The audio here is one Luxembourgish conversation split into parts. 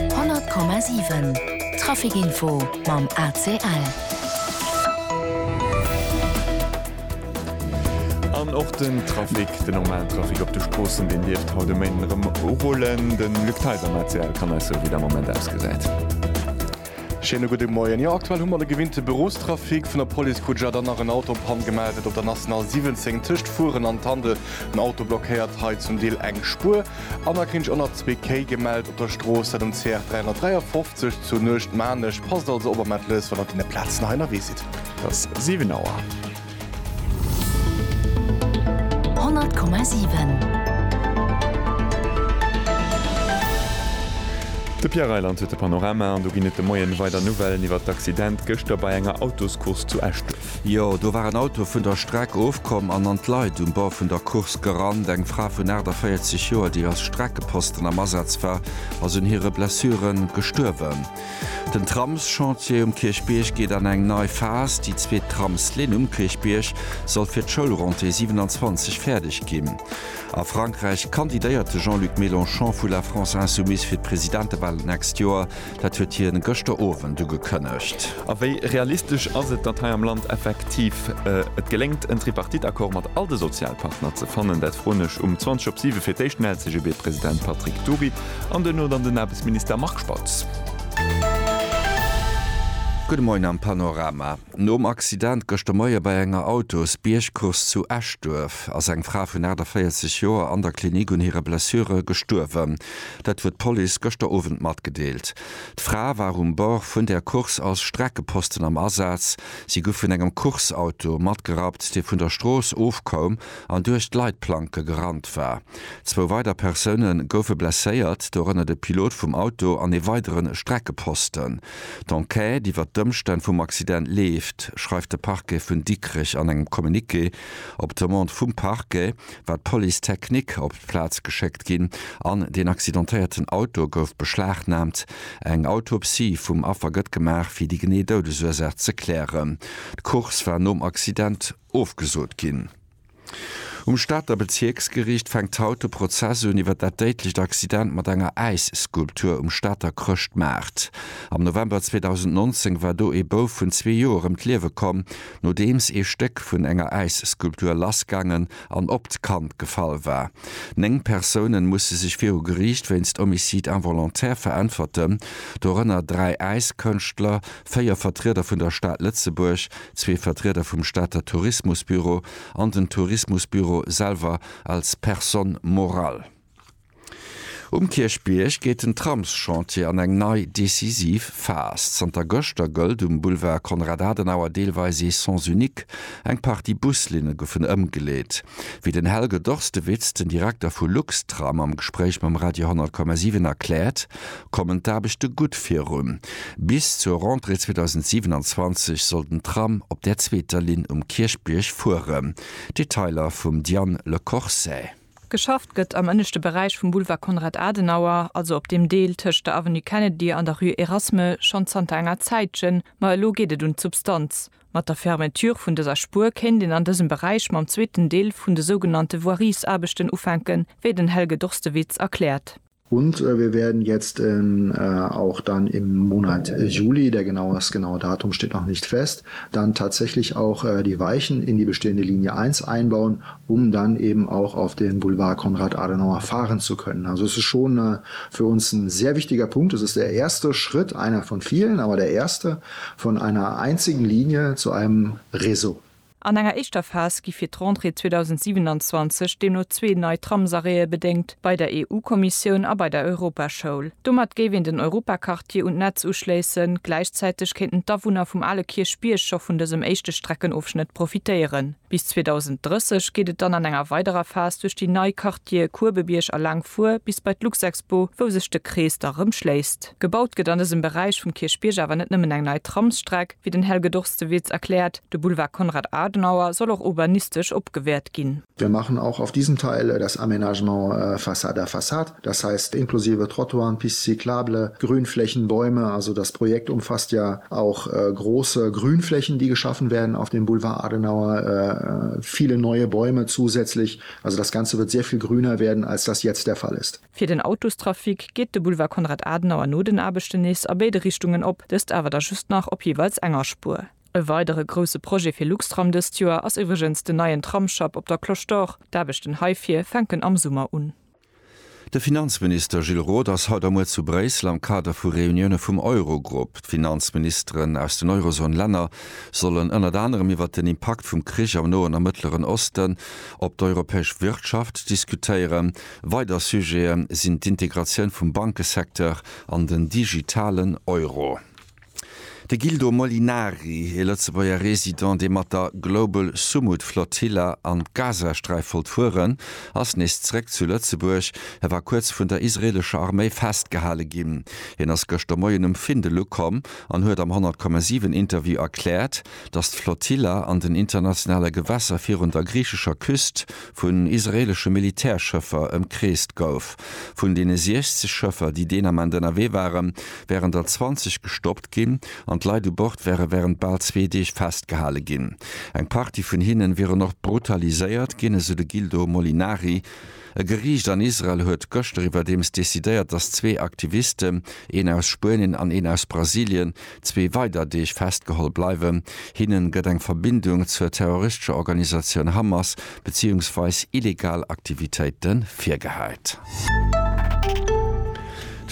100,7 Trafic Info mam ACL. An och den Trafic, den normalen Trafic op de Stroossen, deen dierft haut e Méinden erëm urullen. De Luc Theis am ACL kann eis soe wéi dat am Moment ausgesäit. Schéine gudde Moien. Jo, aktuell hu mer de gewinnte Bürostrafic. Vun der Police krut ech awer dann nach en Auto op Panne gemellt, et op der National 17 tëscht Furen an Tandel. En Auto blockéiert hei zum Deel eng Spuer. An da krinn ech och nach zwee Kéi gemellt op der Strooss, dat um CR 353 zu Nuecht-Maarnech. Passt also op a mellt lës, wann der deene Plazen hei ënnerwee sidd. Et ass 7 Auer. De Pierre Reyland huet de Panorama an do ginn et de Moien weider Nouvellen iwwert d'Accident gëschter bei enger Autoscourse zu Eschduerf. Jo, do war en Auto vun der Streck ofkomm an an d'Leit um Bord vun der Course gerannt. Eng Fra vun 48 Joer, déi als Streckeposten am Asaz war, ass un hire Blessure gestuerwen. Den Tramschantier um Kierchbierg geet an eng nei Phas. Déi zweet Tramslinn um Kierchbierg soll fir d'Schoulrentrée 27 fäerdeg ginn. A Frankräich kandidéiert de Jean-Luc Mélenchon vu La France Insoumise fir d'Presidentewalen d'nächst Joer. Dat huet hien gëschter Owend ugekënnegt. A wéi realistesch ass et, datt hei am Land effektiv et geléngt, en Tripartite-Accord mat all de Sozialpartner ze fannen? Dat froen ech um 20 op 7 fir d'éischt den LCGB-President Patrick Dury. An duerno dann den Aarbechtsminister Marc Spautz. Gudde Moien am Panorama. Nom Accident gëschter Moie bei enger Autosbiergcourse zu Eschduerf ass eng Fra vun 48 Joer an der Klinik un hire Blessure gestuerwen. Dat huet d'Police gëschter Owend matgedeelt. D'Fra war um Bord vun där Course als Streckeposten am Asaz. Si gouf vun engem Course-Auto matgerappt, dee vun der Strooss ofkoum an duerch d'Leitplanke gerannt war. Zwou weider Persoune goufe blesséiert, dorënner de Pilot vum Auto an ee weidere Streckeposten. D'Enquête iwwer d'Ëmstänn vum Accident leeft, schreift de Parquet vun Dikrech an engem Communiqué. Op Demande vum Parquet war d'Police technique op d'Plaz geschéckt ginn an den accidentéierten Auto gouf beschlagnaamt. Eng Autopsie vum Affer gëtt gemaach, fir déi genee Doudesursaach ze klären. D'Course war nom Accident ofgesot ginn. Um Stater Bezierksgeriicht fänkt haut de Prozess un iwwer dat déidlecht Accident mat enger Äisskulptur um Stater Chrëschtmaart. Am November 2019 war do ee Bouf vun zwee Joer ëm d'Liewe komm, nodeems ee Stéck vun enger Äisskulptur lassgaangen an op d'Kand gefall war. Néng Persoune musse sech viru Geriicht wéinst Homicide involontaire veräntwerten, dorënner dräi Äiskënschtler, véier Vertrieder vun der Stad Lëtzebuerg, zwee Vertrieder vum Stater Tourismusbüro an den Tourismusbüro selwer als Personne morale. Um Kierchbierg geet den Tramschantier an eng nei decisiv Phas. Zanter gëschter gëllt um Boulevard Konrad Adenauer deelweis ee Sens unique, eng Partie Buslinne goufen ëmgeleet. Wéi den Helge Dorstewitz, den Direkter vu Luxtram, am Gespréich mam Radio 10,7 erkläert, kommen d'Aarbechte gutt virun. Bis zur Rentrée 2027 soll den Tram op där zweeter Linn um Kierchbierg fueren. Detailer vum Diane Le Corset. Geschafft gëtt am ënneschte Beräich vum Boulevard Konrad Adenauer, also op deem Deel tëscht der Avenue Kennedy an der Rue Erasme, schonn zanter enger Zäitchen. Ma elo geet et un d'Substanz. Mat der Fermeture vun dëser Spuer kéint een an dësem Beräich mam zweeten Deel vun de sougenannte Voiriesaarbechten ufänken, wéi den Helge Dorstewitz erkläert. Und wir werden jetzt auch dann im Monat Juli, der genau, das genaue Datum steht noch nicht fest, dann tatsächlich auch die Weichen in die bestehende Linie 1 einbauen, um dann eben auch auf den Boulevard Konrad Adenauer fahren zu können. Also es ist schon für uns ein sehr wichtiger Punkt. Es ist der erste Schritt, einer von vielen, aber der erste. Von einer einzigen Linie zu einem Réseau. An enger éischter Phas gi fir d'Rentrée 2027 deemno zwee nei Tramsarrêtë bedéngt, bei der EU-Kommissioun a bei der Europaschoul. Domat géif een den Europaquartier un d'Netz uschléissen, gläichzäiteg kéinten d'Awunner vum ale Kierchbierg scho vun dësem éischte Streckenofschnëtt profitéieren. Bis 2030 geet et dann an enger weiderer Phas duerch déi nei Dir Kuebebierg a laang fuer bis bei d'Luxexpo, wou sech de Krees da rëm schléisst. Gebaut gëtt an dësem Beräich vum Kierchbierg awer net nëmmen eng nei Tramsstreck, wéi den Helge Dorstewitz erkläert, de Boulevard Konrad Adenauer soll och urbanistesch opgewäert ginn. Wir machen auch auf diesem Teil das Aménagement façade à façade, das heißt inklusive Trottoiren, Piste cyclable, Grünflächen, Bäume. Also das Projekt umfasst ja auch große Grünflächen, die geschaffen werden auf dem Boulevard Adenauer, viele neue Bäume zusätzlich Also das Ganze wird sehr viel grüner werden als das jetzt der Fall ist. Fir den Autostrafic geet de Boulevard Konrad Adenauer no den Aarbechten nees a béide Richtungen op, dëst awer da just nach op jeeweils enger Spuer. E weidere grousse Projet fir Luxtram dëst Joer ass iwwregens den neien Tramsschapp op der Cloche d'Or. D'Aarbechten heifir fänken am Summer un. De Finanzminister Gilles Roth ass haut a muer zu Bréissel am Kader vu Reunioune vum Eurogrupp. D'Finanzministeren aus den Eurozone-Länner sollen ënnert anerem iwwer den Impakt vum Krich am Noen a Mëttleren Osten op d'europäesch Wirtschaft diskutéieren. Weider Sujete sinn d'Integratioun vum Bankesecteur an den digitalen Euro. De Gildo Molinari, ee Lëtzebuerger Resident, dee mat der Global Sumud Flotilla an d'Gazasträif wollt fueren, ass nees zeréck zu Lëtzebuerg. E war kuerz vun der israeelescher Arméi festgehale ginn. Hien ass gëschter Moien um Findel ukomm an huet am 100,7 Interview erkläert, datt d'Flotilla an den internationale Gewässer virun der griichescher Küst vun israeelesche Militärschëffer ëmkreest gouf. Vun deene 60 Schëffer, déi deen Ament ënnerwee waren, wären der 20 gestoppt ginn an d'Leit u Bord wäre wärend bal zwee Deeg festgehale ginn. Eng Partie vun hinne wieren och brutaliséiert ginn, esou de Gildo Molinari. E Geriicht an Israel huet gëschter iwwerdeems decidéiert, datt zwee Aktivisten, een aus Spuenien an een aus Brasilien, zwee weider Deeg festgeholl bleiwen. Hinne gëtt eng Verbindung zur terroristescher Organisatioun Hamas beziungsweis illegal Aktivitéite virgehäit.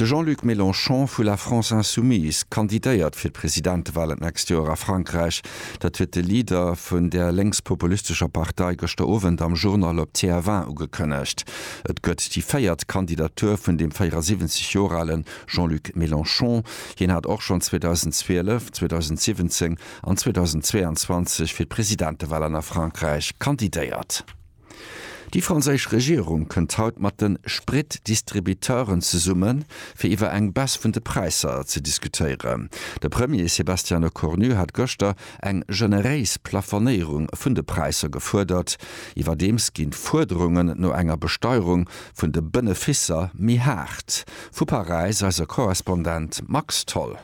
De Jean-Luc Mélenchon vu La France Insoumise kandidéiert fir d'Presidentewalen d'nächst Joer a Frankräich. Dat huet de Leader vun där lénkspopulistescher Partei gëschter Owend am Journal op TF1 ugekënnegt. Et gëtt déi véiert Kandidatur vun dem 74 Joer ale Jean-Luc Mélenchon. Hien hat och schonn 2012, 2017 an 2022 fir d'Presidentewalen a Frankräich kandidéiert. Déi franséisch Regierung kënnt haut mat de Spritdistributeuren zesumme fir iwwer eng Baisse vun de Präisser ze diskutéieren. De Premier Sébastien Lecornu hat gëschter eng generéis Plafonéierung vun de Präisser gefuerdert. Iwwerdeems ginn d'Fuerderungen no enger Besteierung vun de Benefisser méi haart. Vu Paräis eise Korrespondent Max Tholl.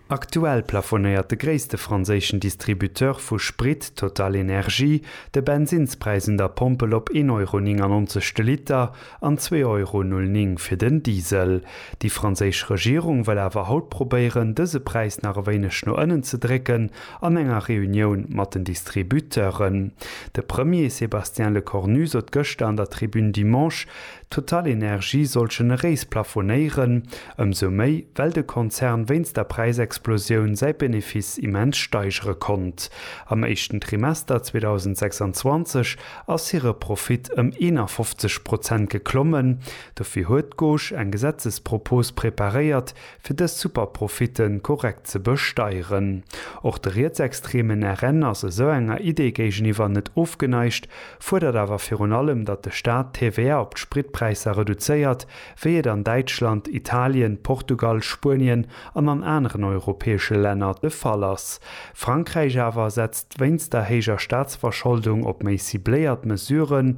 Aktuell plafonéiert de gréisste franséischen Distributeur vu Sprit, TotalEnergies, de Bensinnspräis un der Pompel op 1 Euro 99 de Liter an 2 Euro 09 fir den Diesel. Déi franséisch Regierung wëll awer haut probéieren, dëse Präis nach e wéineg no ënnen ze drécken an enger Reunioun mat den Distributeuren. De Premier Sébastien Lecornu sot gëschter an der Tribune Dimanche, TotalEnergies soll generéis plafonéieren, ëmsou méi, well de Konzern wéinst der Präisexplosioun säi Benefice immens steigere konnt. Am éischten Trimester 2026 ass hire Profit ëm 51 Prozent geklommen. Dofir huet d'Gauche eng Gesetzespropos preparéiert, fir dës Superprofitte korrekt ze besteieren. Och de rietsextreemen RN ass esou enger Idee géigeniwwer net ofgeneigt, fuerdert awer virun allem, datt de Staat d'TVA op d'Spritpräisser reduzéiert, wéi et an Däitschland, Italien, Portugal, Spuenien an an aneren europäesche Länner de Fall ass. Frankräich awer setzt wéinst der héijer Staatsverscholdung op méi cibléiert Mesuren,